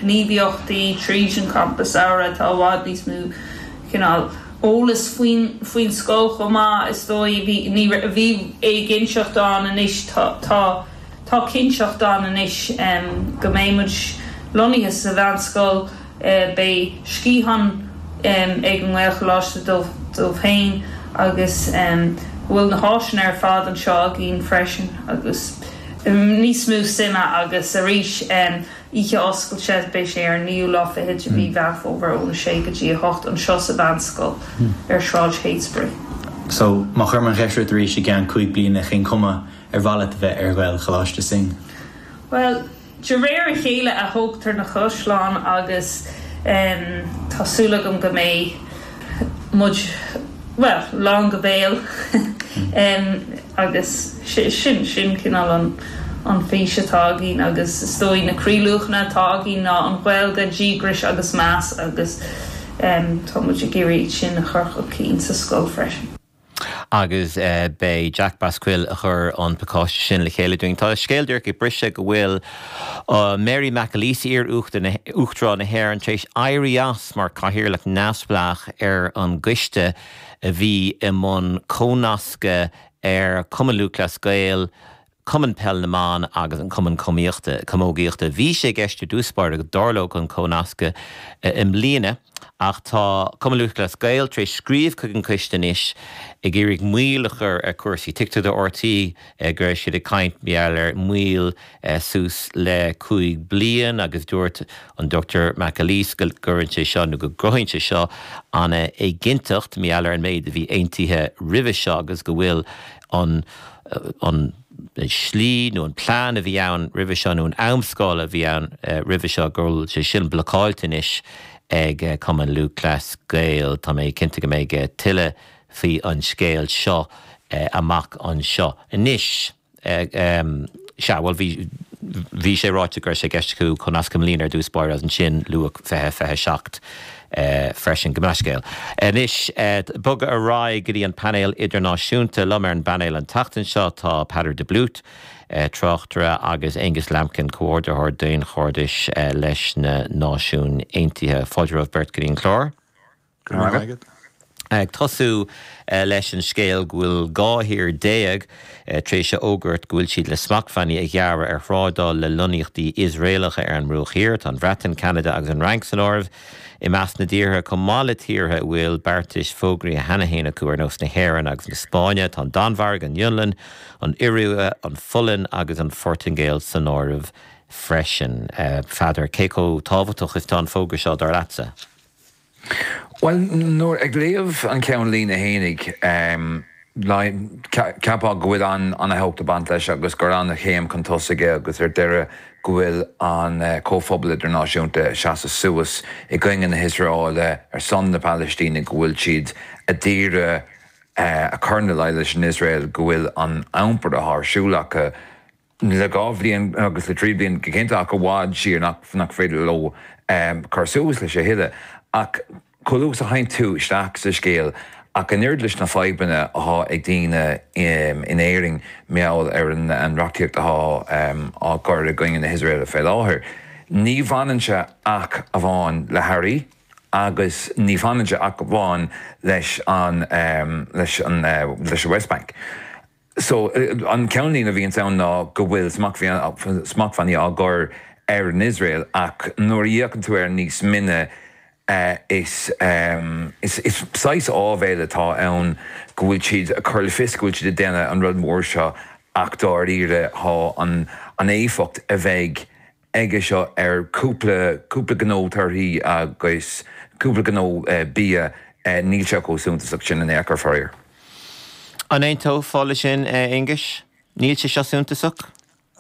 gníomhaíochtaí tríd an champas samhraidh. Tá i bhfad níos mó cineál eolas faoin scoil chomh maith, is dóigh. Bhí, bhí éiginnteacht ann agus, tá cinnteacht ann anois go mbeidh muid lonnaithe sa Mheánscoil. Beidh sciathán ag an nGaelcholáiste dóibh féin agus go bhfuil na háiseanna ar fad anseo againn freisin agus níos mó suime agus arís Oíche oscailte, beidh sé ar an naoú lá fichead de mhí Mheán Fómhair ón 6 go dtí 8, anseo sa Mheánscoil ar Shráid Heytesbury. So, má chuirim an cheist ort arís i gceann cúig bliana, cén chuma ar mhaith leat a bheith ar Ghaelcholáiste Synge? Bhuel, de réir a chéile a thógtar na caisleáin agus tá súil agam go mbeidh. muid, bhuel, lán go béal agus sin cineál an fís atá againn agus is dóigh na croíluachanna atá againn ná an Ghaeilge, díograis agus meas agus tá muid ag iarraidh sin a chur chun cinn sa scoil freisin. Agus b'é Jack Basquill a chuir an pacáiste sin le chéile dúinn. Tá scéal díreach ag briseadh go bhfuil Mary McAleese, iar-Uachtarán na hÉireann, tar éis éirí as mar Cathaoirleach neamhspleách ar an gcoiste a bhí i mbun comhnascadh ar Chumann Lúthchleas Gael, Cumann Peil na mBan agus an Cumann Cumíochta, Camógaíochta. Bhí sé i gceist i dtús báire go dtarlódh an comhnascadh i mbliana ach tá Cumann Lúthchleas Gael tar éis scríobh chuig an gcoiste anois ag iarraidh moill a chur ar chúrsaí. Tuigtear do RTÉ go raibh siad ag caint mar gheall ar mhoill suas le cúig bliain agus dúirt an Dr McAleese go gcuireann sé seo nó go gcruthaíonn sé seo an-éiginnteacht mar gheall ar an méid a bhí aontaithe roimhe seo agus go bhfuil an slí nó an plean a bhí ann roimhe seo nó an amscála a bhí ann roimhe seo, go bhfuil sé sin blocáilte anois ag Cumann Lúthchleas Gael. Tá mé cinnte go mbeidh tuilleadh faoi an scéal seo amach anseo. Anois, sea, bhuel, bhí, bhí sé ráite go raibh sé i gceist acu comhnascadh i mbliana i dtús báire agus ansin luadh 2027. é freisin. Go maith, bhuel, scéal anois bogadh ar aghaidh go dtí an painéal idirnáisiúnta. Liom ar an bpainéal an tseachtain seo tá Peadar de Blúit, tráchtaire, agus Aonghus Lambkin, comhordaitheoir daonchairdiúil leis na Náisiúin Aontaithe. Fáilte romhaibh beirt go dtí an clár. Go raibh maith agat. Ag tosú leis an scéal go bhfuil dhá thír déag tar éis a fhógairt go bhfuil siad le smachtbhannaí a ghearradh ar thrádáil le lonnaíochtaí Iosraelacha ar an mBruach Thiar. Tá an Bhreatain, Ceanada agus an Fhrainc san áireamh i measc na dtíortha, chomh maith le tíortha a bhfuil beartais fógraíthe cheana féin acu ar nós na hÉireann agus na Spáinne. Tá an Danmhairg, an Fhionlainn, an Iorua, an Pholainn agus an Phortaingéil san áireamh freisin. Pheadar, Cé chomh tábhachtach is atá an fógra seo, dar leatsa? Bhuel, nuair a léann tú an ceannlíne fhéinig, cheapfá go bhfuil ana-thábhacht ag baint leis agus gur ana-chéim chun tosaigh é agus ar deireadh go bhfuil an comhphobal idirnáisiúnta ag seasamh suas i gcoinne na hIosraeile ar son na Palaistíne go bhfuil siad a d'iarraidh a chur ina luí leis an Iosrael go bhfuil an t-iompar atá ar siúl acu le dhá bhliain agus le trí bliana go cinnte, ach i bhfad siar nach féidir leo cur suas leis a thuilleadh. Ach chomh luath is a théann tú isteach sa scéal, ach an oiread leis na fadhbanna athá ag daoine in Éirinn mar gheall ar an reachtaíocht athá á gcur i gcoinne na hIosraeile fé láthair, ní bhaineann sé ach amháin le hearraí agus ní bhaineann sé ach amháin leis an West Bank. so, an ceannlíne a bhíonns ann ná go bhfuil smachtbhannaí á gcur ar an Iosrael ach nuair a fhéachann tú air níos mine is saghas áibhéil atá ann go bhfuil siad ag cur le fios go bhfuil siad ag déanamh an rud mór seo ach dáiríre tá an éifeacht a bheidh aige seo ar chúpla, cúpla gnó torthaí agus cúpla gnó bia, níl sé chomh suntasach sin in aon chor faraor. An aontófá leis sin, a Aonghuis? Níl sé seo suntasach?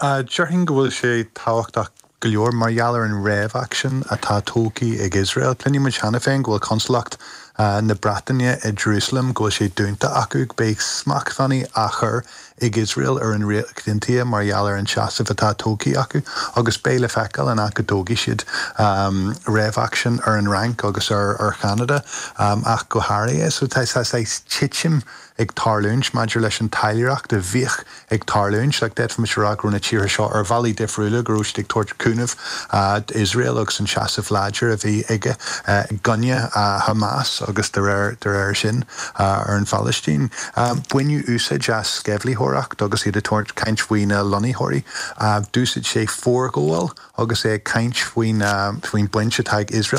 Déarfainn go bhfuil sé tábhachtach go leor mar gheall ar an reaction atá tógtha ag Iosrael. Cluineann muid cheana féin go bhfuil Consalacht na Breataine i Jerusalem, go bhfuil sé dúnta acu go mbeidh smachtbhannaí á chur ag Iosrael ar an Ríocht Aontaithe mar gheall ar an seasamh atá tógtha acu agus beidh le feiceáil an ea go dtógfaidh siad reaction ar an Fhrainc agus ar Cheanada ach go háirithe. So tá saghas titim ag tarlúint maidir leis an talmhaireacht a bhíodh ag tarlúint. Like d'fhéadfaimis a rá go raibh na tíortha seo ar bhealaí difriúla go raibh siad ag tabhairt cúnaimh d'Iosrael agus an seasamh láidir a bhí aige i gcoinne Hamas agus de réir sin ar an Phailistín. Baineadh úsáid as sceimhlitheoireacht agus iad ag tarraingt caint faoi na lonnaitheoirí. D'úsaid sé forghabháil agus é ag caint faoin faoin bhaint atá ag Iosrael